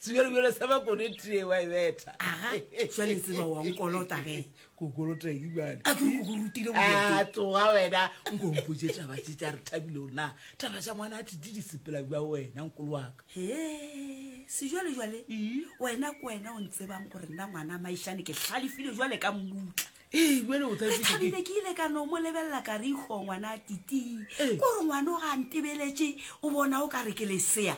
Tsubjalo bjalo sa ba kone tee wa e betha. Aga, šale tseba wa nkolota ge. Ko kolota eng bane? A ke go rutile go ya. A tsoga wena, nko mpotše taba tše tša re thabile o na. Taba tša ngwana a titi di sepela bja wena nkolo wa ka. He, se jwale jwale. Wena ko wena o ntsebang gore nna ngwana maišane ke hlalefile jwale ka mmutla. Ee, bjale o tla Re ikhwetša ke- thabile ke ile ka no mo lebelela ka re ikgo ngwana a titii Ee. ko re ngwana o ga a ntebeletše o bona o ka re ke lesea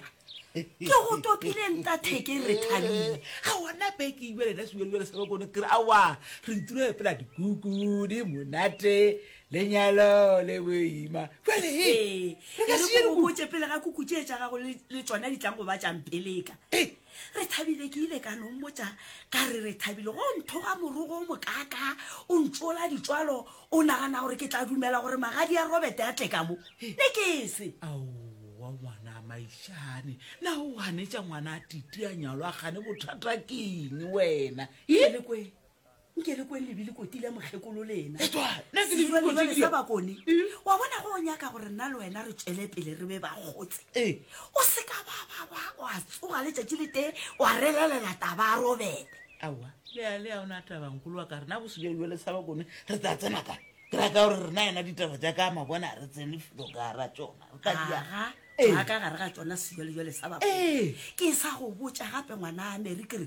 ke go topile ntatheke re thabile ga ona beke jale na sebjalo jale sa bakone kere awa re ntiro epela dikuku di monate lenyalo le boima jale he Ee, re ka e re seye ko dikuku botše pele ga kuku tše tša gago le le tšona di tlang go ba tšampeleka Ee, Re thabile, ke ile ka no mmotša ka re re thabile. Go nthoga morogo o mokaakaa, o ntšola ditšwalo, o nagana gore ke tla dumela gore magadi ya Robert a tle ka mo. Ne ke se. Aowa ngwana a maišane, na o ganetša ngwana a titi a nyalwa gane bothata keng wena? Yelekwee. nke le kweng lebile koti le mokgekolo lena sa bakone wa bona go o nyaka gore nna le wena re tšwele pele re be ba kgotse ee. o se ka bababa wa tsoga letšatši le tee wa relelela taba a robete aowa leale a ona tabankolo wa ka rena go sejalo jale sa bakone re tsa tsena ka ke ra ka gore rena yena ditaba tša ka mabona re tsene filo ka ra tsona re ka diaa ee. ka gare ga tsona sejalo jale sa bakone ee. ke sa go botša gape ngwana a mary ke re